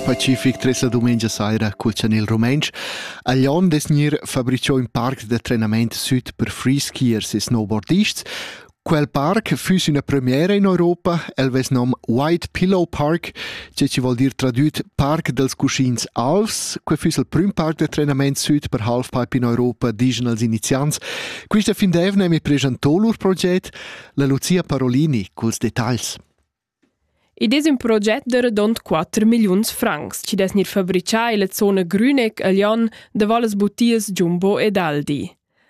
Pacific tres la dumengia saira cuccian il rumentsch. A Lyon des gnir fabricio in parc da trenament süt per freeskiers e snowboardists. Quel parc füss üna premiera in Europa, el vess nom White Pillow Park, che ci vol dir tradüt Parc dels Cuschins Alvs. Que füss il prüm parc da trenament süt per halfpipe in Europa, digen els iniziants. Quista fin d'eivna mi pregiantò lur proget, la Lucia Parolini culs detagls. Id es ün proget da radund quatter milliuns francs chi dess gnir fabrichà illa zona Grüneck a Lyon davo las butias Jumbo ed Aldi.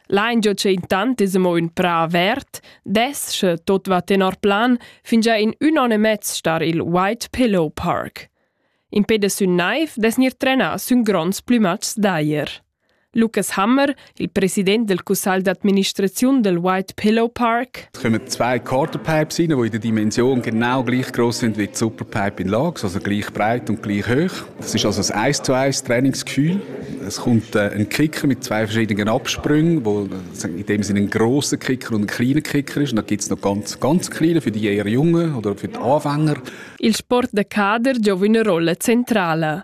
L'aingio cha intant es amo ün prà avert dess, sche tot va tenor plan, fingià in ün on e mez star i'l White Pillow Park. Impè da sün naiv dess gnir trenà sün gronds plümatschs d'ajer. Lukas Hammer, il president del cussagl d'administraziun del White Pillow Park. Es kommen zwei Kartenpipes rein, die in der Dimension genau gleich groß sind wie die Superpipe in Lage, also gleich breit und gleich hoch. Das ist also ein 1 zu 1 Trainingsgefühl. Es kommt äh, ein Kicker mit zwei verschiedenen Absprüngen, wo in dem Sinne ein grosser Kicker und ein kleiner Kicker ist. Und dann gibt es noch ganz, ganz kleine für die eher Jungen oder für die Anfänger. Il sport de kader gioca una rolla centrale.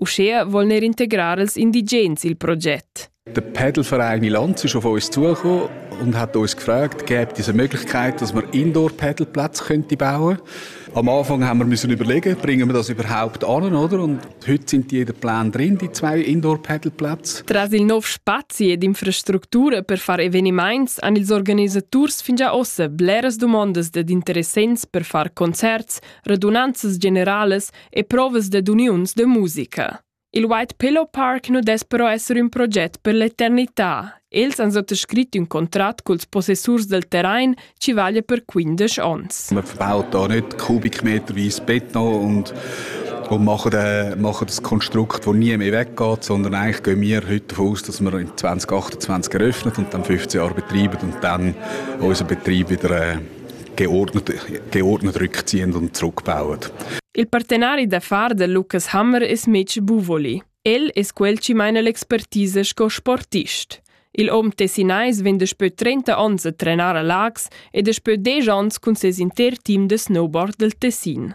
Uschea voln er integrar els indigens il proget. Der Padelverein Milanz ist auf uns zugekommen und hat uns gefragt, gäbe es eine Möglichkeit, dass wir Indoor-Padelplätze könnte bauen Am Anfang haben wir müssen überlegen, bringen wir das überhaupt an, oder? Und heute sind die in den Plänen drin, die zwei Indoor-Padelplätze. Tras il nov spazi ed infrastructura per far eveniments han ils organisaturs fin già ossa bleras domandas ed interessents per far concerts, radunanzas generales e provas dad uniuns de musica. Il White Pillow Park nu dess però esser ün proget per l'eternità. Els han sottoscrit ün contrat culs possessurs del terrain ci vaglia per 15 ons. Man verbaut da nicht kubikmeterweise Beton und und machen, äh, machen das Konstrukt, das nie mehr weggeht, sondern eigentlich gehen wir heute davon aus, dass wir in 2028 eröffnet und dann 15 Jahre betreiben und dann unseren Betrieb wieder äh, geordnet rückziehen und zurückbauen. Il partenari d'affar de Lucas Hammer es Mitch Buvoli. El es quel chi maina l'expertise sco sportist. Il hom tessinais vegn daspö 30 ons a trenar a Lax ed daspö 10 ons cun ses inter team de snowboard del Tessin.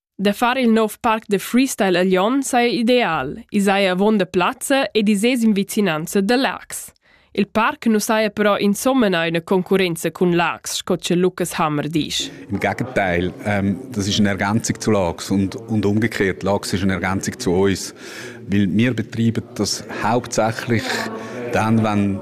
Da far il nov parc da freestyle a Lyon saja ideal. I saja avon da plazza ed i sez in vicinanza da Lax. Il parc nu saja però insomma eine Konkurrenz cun Lax, sco che Lukas Hammer dice. Im Gegenteil, ähm, das ist eine Ergänzung zu Lax und, und umgekehrt. Lax ist eine Ergänzung zu uns, weil wir betreiben das hauptsächlich dann, wenn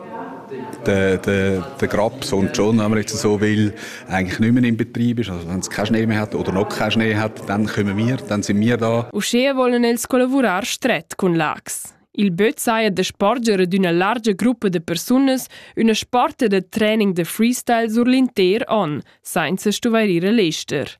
der, der, der Grabs und schon, wenn man jetzt so will, eigentlich nicht mehr im Betrieb ist, also wenn du keinen Schnee mehr hat oder noch keinen Schnee hat, dann kommen wir, dann sind wir da. Uschè wollen els collavurar stret cun Lax. Il böt saja de sporgere d'üna largia gruppa de persunas üna sporta de training de freestyle sur l'inter on, sainza stuvairire l'ester.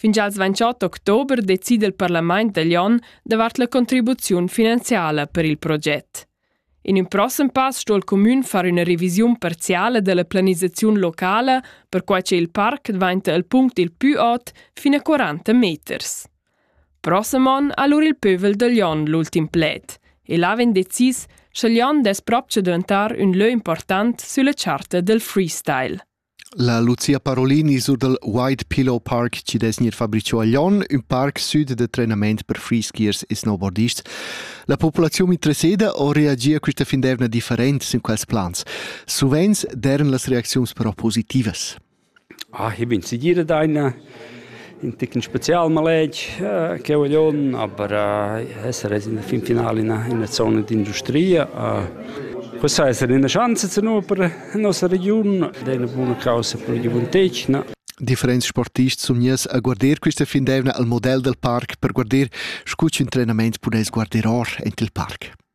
Fin als 28 october decida il parlament taglion davart la contribuziun finanziala per il proget. In in prossem pass sto il comün far üna revisiun parziale della planisaziun locala, perquai che il parc dvainta il punct il pü ot fin a 40 meters. Prossem on ha lur il pövel da Lyon l'ultim pled e là vegn decis, sche Lyon dess propcha daventar ün lö important sülla charta del freestyle. La Lucia Parolini sur dal White Pillow Park chi dess gnir fabrichà a Lyon, ün parc süd da trenament per freeskiers e snowboardists. La populaziun interesseda o reagia quista fin d'eivna different sün quels plans? Suvenz d'eiran las reacziuns però positivas. Ah, ich bin zu dir deine in ticn spezial maletg eh, che voglion, aber eh, esser es in der fin finale in einer Zone d'industria. Eh, Questa essere una chance zu nu per la nostra regione, è una buona causa per la gioventù. Differents sportists sun gners a guarder quista fin d'eivna al model dal parc per guarder scu ch'ün trenament puness guarder or ent il parc.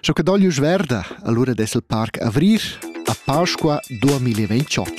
Scho che doglius verda, allura dess il parc avrir a Pasqua 2028.